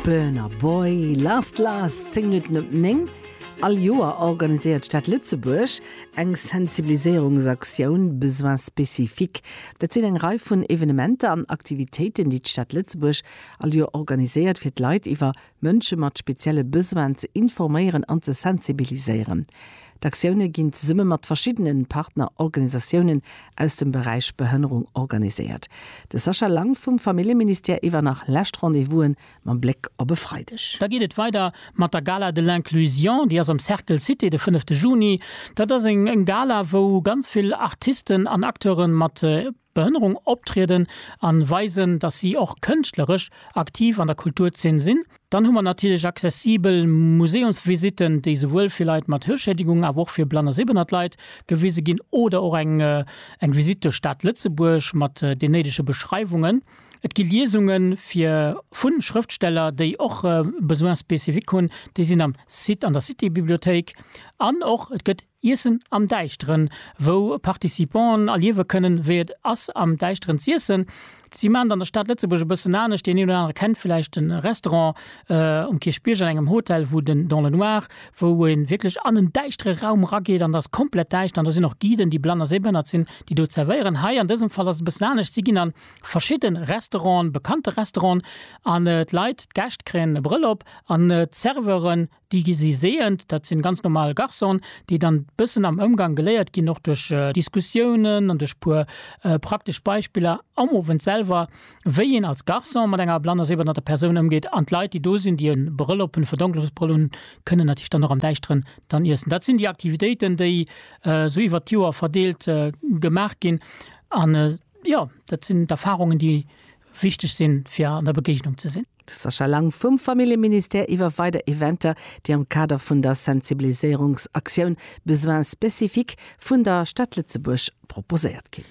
Burna Boy, Last Last, 10 Minutten op 9. All Joer organiséiert d'Stad Lëtzebuerg eng Sensibiliséierungsaktioun Besoins spécifiques. Dat sinn eng Rei vun Evenementer an Aktivitéiten, déi d'Stad Lëtzebuerg all Joer organiséiert, fir d'Leit iwwer Mënsche mat spezielle Besoinen ze informéieren an ze sensibiliséieren. D'Aktioune ginn zesumme mat verschiddene Partnerorganisatiounen aus dem Beräich Behënnerung organiséiert. De Sascha Lang vum Familljeministère iwwer nach lescht Rendez-vous'en mam Bléck op e Freideg. Da geet et weider mat der Gala de l'inclusion, déi ass am Cercle Cité de fënnefte Juni. Dat ass eng Gala wou ganz vill Artisten an Acteure mat. Behënnerung optrieden an weisen, dass si och kënschtleresch aktiv an der Kulturzeen sinn. Dann hu mer natierlech accessibel Museumsvisitten, déi souwuel fir Leit mat Hörschädigung awer och fir blann a sehbehnnert Leit gewise ginn oder och eng eng Visitt duerch d'Stad Lëtzebuerg mat den néidege Beschreiwungen. Et gi Liesunge fir vun Schrëftsteller, déi och Besoins spécifiques hunn, déi sinn am Site an der Citybibliothéik an och et gëtt. Iessen am Däischteren, wou Participanten erliewe kënnen, wéi et ass am Däischteren z'iessen. Si maachen et an der Stad Lëtzebuerg e bëssen anescht. Deen een oder anere kennt vläicht de Restaurant um Kierchbierg an engem Hotel, wou den Dans le Noir, wou ee wierklech an en däischtere Raum erageet an et ass komplett däischter an do sinn och Guiden, déi blann a séibehënnert sinn, déi do zerwéieren. Hei an dësem Fall ass et e bëssen anescht, si ginn a verschidde Restauranten, bekannte Restauranten an d'Leit, d'Gäscht kréien e Brëll op an d'Serveuren, Déi gi siséiend, dat sinn ganz normal Garçonen, déi dann bëssen am Ëmgang geléiert ginn, och duerch Diskussiounen an duerch puer praktesch Beispiller am Owend selwer, wéi een als Garçon mat enger blanner, sehbehinderter Persoun ëmgeet. An d'Leit, déi do sinn, déi e Brëll op hunn, e Verdonklungsbrëll hunn, kënnen natierlech dann och am Däischteren dann iessen. Dat sinn déi Aktivitéiten, déi esou iwwert d'Joer verdeelt gemaach ginn. An jo, dat sinn d'Erfahrungen, déi wichteg sinn, fir an der Begegnung ze sinn. De Sascha Lang vum Familljeministère iwwer weider Eventer, déi am Kader vun der Sensibiliséierungsaktioun Besoins spécifiques vun der Stad Lëtzebuerg proposéiert ginn.